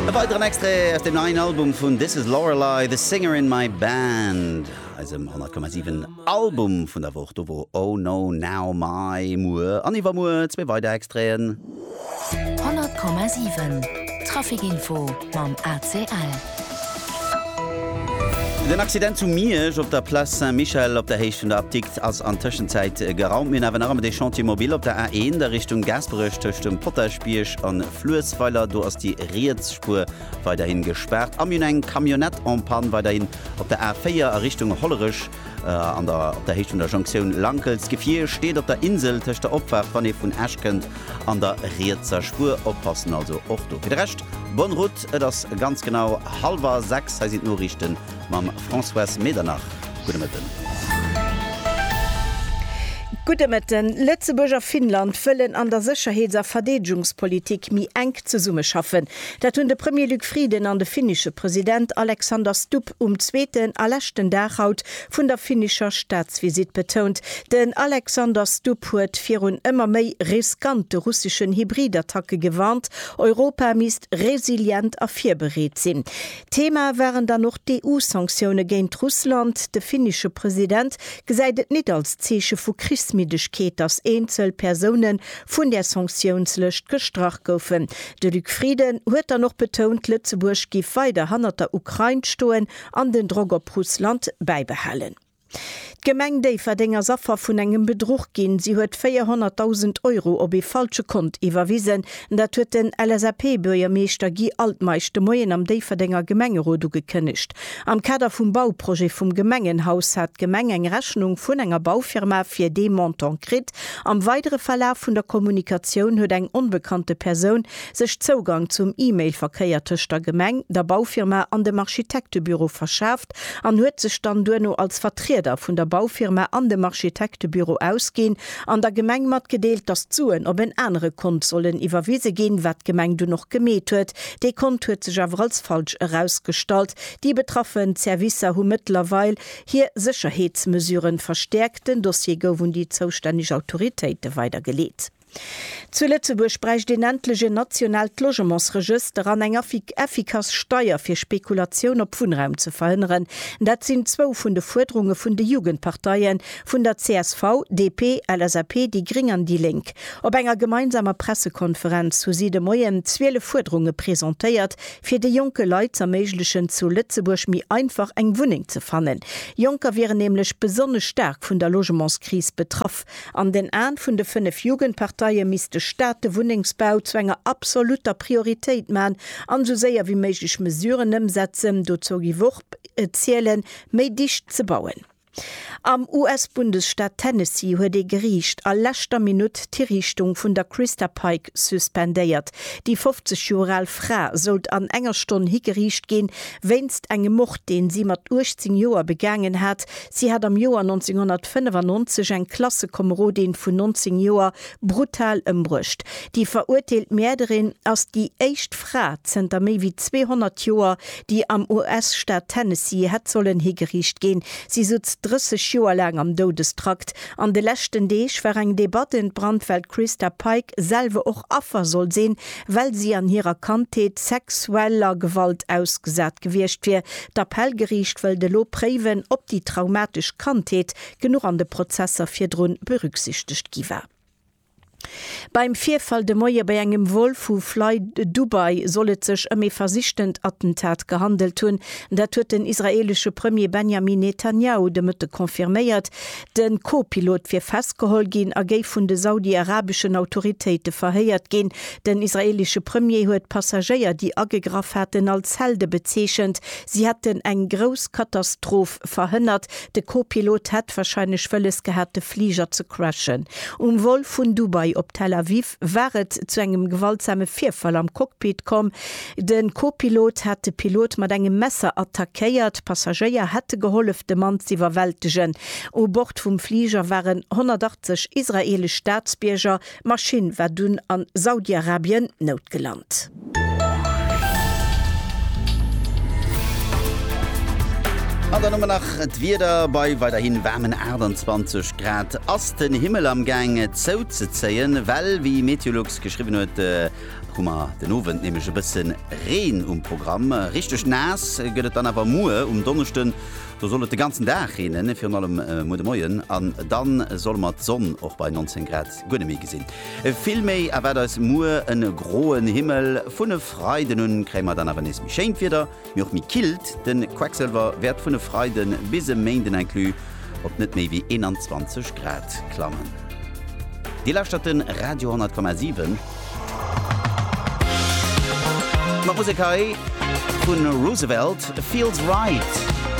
E weideren Extrait aus dem neien Album vun This Is Lorelei, The Singer In My Band, eisem 100,7 Album vun der Woch. Do wor Oh No Now Mai, Muer an Iwwermuer zwee weider Extraiten. 100,7 Traffic Info mam ACL. Den Accident zu Miersch op der Place Saint-Michel op der Héicht vun der Apdikt ass an Tëschenzäit geraumt. Mir hunn awer nach ëmmer dee Chantier mobile op der A1 a Richtung Gaasperech tëscht dem Potaschbierg a Fluessweiler. Do ass déi riets Spuer weiderhi gespaart. A mir hunn eng Camionnette en panne weiderhin op der A4 a Richtung Hollerech. An der op der Héicht vun der Jonktioun Lankels. D'Gefier steet op der Insel tëscht der Opfaart, wann ee vun Esch kënnt, an der rietser Spuer. Oppassen also och do. Fir de Rescht, bonne route, et ass ganz genau hallwer sechs. Hei sinn d'Noriichte mam Françoise Medernach. Gudde Mëtten. Gudde Mëtten. Lëtzebuerg a Finnland wëllen an der Sécherheets a Verdeedegungspolitik méi enk zesummeschaffen. Dat hunn de Premier Luc Frieden an de finnesche President Alexander Stubb Etapp um zweeten a leschten Dag haut vun der finnischer Staatsvisitt betount. Den Alexander Stubb huet virun ëmmer méi riskante russeschen Hybridattacke gewarnt. Europa misst resilient a virbereet sinn. Thema waren dann och d'EU-Sanktioune géint Russland. De finnesche President gesäit et nit als Zeeche vu Krichsmiddegkeet, datt eenzel Persoune vun där Sanktiounslëscht gestrach goufen. De Luc Frieden huet dann och betount, Lëtzebuerg giff weider hannert der Ukrain stoen an den Drock op Russland bäibehalen. D'Gemeng Déifferdeng ass Affer vun engem Bedruch ginn. Si huet 400.000 Euro op ee falsche Kont iwwerwisen. Dat huet den LSAP-Buergermeeschter Guy Altmeisch de Moien am Déifferdenger Gemengerot ugekënnegt. Am Kader vum Bauprojet vum Gemengenhaus hat d'Gemeng eng Rechnung vun enger Baufirma fir dee Montant kritt. Am weidere Verlaf vun der Kommunikatioun huet eng onbekannte Persoun sech Zougang zum E-Mail-Verkéier tëscht der Gemeng, der Baufirma an dem Architektebüro verschaaft an huet sech dann duerno als Vertrieder vun der Baufirma an dem Architektebüro ausginn an der Gemeng matgedeelt, dass d'Suen op en anere Kont sollen iwwerwise ginn, wat d'Gemeng dunn och gemeet huet. Dee Kont huet sech awer als falsch erausgestallt. Déi betraffen Servicer hu mëttlerweil. Hir Sécherheetsmesuren verstäerkt. Den Dossier gouf un déi zoustänneg Autoritéite weidergeleet. Zu Lëtzebuerg bräicht een endlech en nationaalt Logementsregëster an eng effikass Steier fir Spekulatioun op Wunnraum ze verhënneren. Dat sinn zwou vun de Fuerderunge vun de Jugendparteie vun der csv, DP, LSAP, déi gréng an déi lénk. Op enger gemeinsamer Pressekonferenz hu si de Moien 12 Fuerderunge presentéiert, fir de jonke Leit z'erméiglechen zu Lëtzebuerg méi einfach eng Wunneng ze fannen. Jonker wieren nämlech besonnesch staark vun der Logementskris betraff. An den Aen vun de 5 Jugendparteie misst de Staat de Wunnengsbau zu enger absolutter Prioritéit man an esou séier wéi méiglech Mesuren ëmsetzen, dozou gi wor zielen, méi dicht ze bauen. Am US-Bundesstaat Tennessee huet ee Geriicht a leschter Minutt d'Hiriichtung vun der Christa Pike suspendéiert. Déi 50 Joer al Fra sollt an enger Stonn higeriicht ginn, wéinst engem Mord, deen si mat 18 Joer begaangen hat. Si hat am Joer 1995 eng Klassekomerodin vun 19 Joer Brutal ëmbruecht. Déi verurteelt Mäerderin ass déi éischt Fra zënter méi wéi 200 Joer, déi am US-Staat Tennessee hätt sollen higeriicht ginn. Si sutz 30 Joer laang am Doudestrakt. An de leschten Deeg war eng Debatt ent brannt, well d'Christa Pike selwer och Affer soll sinn, well si an hirer Kandheet sexueller Gewalt ausgesat gewiescht wier. D'Appellgeriicht wëllt elo préiwen, ob déi traumatesch Kandheet genuch an de Prozesser virdrun berücksichtegt gi war. Beim Virfall de Moie bei engem Vol vu Fly Dubai soll et sech ëm ee versichtent Attentat gehandelt hunn. Dat huet den israeelesche Premier Benjamin Netanjahu de Mëtte confirméiert. De Co-Pilot wier festgeholl ginn a géif vun de saudi-arabeschen Autoritéite verhéiert ginn. Den israeelesche Premier huet d'Passagéier, déi agegraff haten, als Helde bezeechent. Si hätten eng grouss Katastroph verhënnert, De Co-Pilot hätt warscheinlech wëlles gehat de Fliger ze crashen. Um Vol vun Dubai op Tel Aviv war et zu engem gewaltsame Virfall am Cockpit komm. De Co-Pilot hat de Pilot mat engem Messer attackéiert. Passagéier hätte gehollef de Mann z'iwwerwältegen. U Bord vum Fliger waren 180 israeelesch Staatsbierger. D'Maschinn war dunn a Saudiarabien noutgelant. An dann hu mer nach d'Wieder, bei weiderhin waarmen 28 Grad ass den Himmel am Gaang zouzezéien, well wéi Meteolux geschriwwen huet, hu mer den Owend nämlech e bësse Reen um Programm. Richteg naass gëtt et dann awer muer um Donneschden, Do soll et de ganzen Dag reenen, virun allem muer de Moien, an dann solle mer d'Sonn och bei 19 Grad guer net méi gesinn. Vill méi erwaart eis muer e groen Himmel. Vun e Freiden un kréie mer dann awer nees méi schéint Wieder, mee och méi killt. De Quecksëlwer wäert vun e Freiden bis e Méinden inclus op net méi wéi 21 Grad klammen. Dir lauschtert de Radio 10,7. Mat Musek hei vun Roosevelt, Feels Right.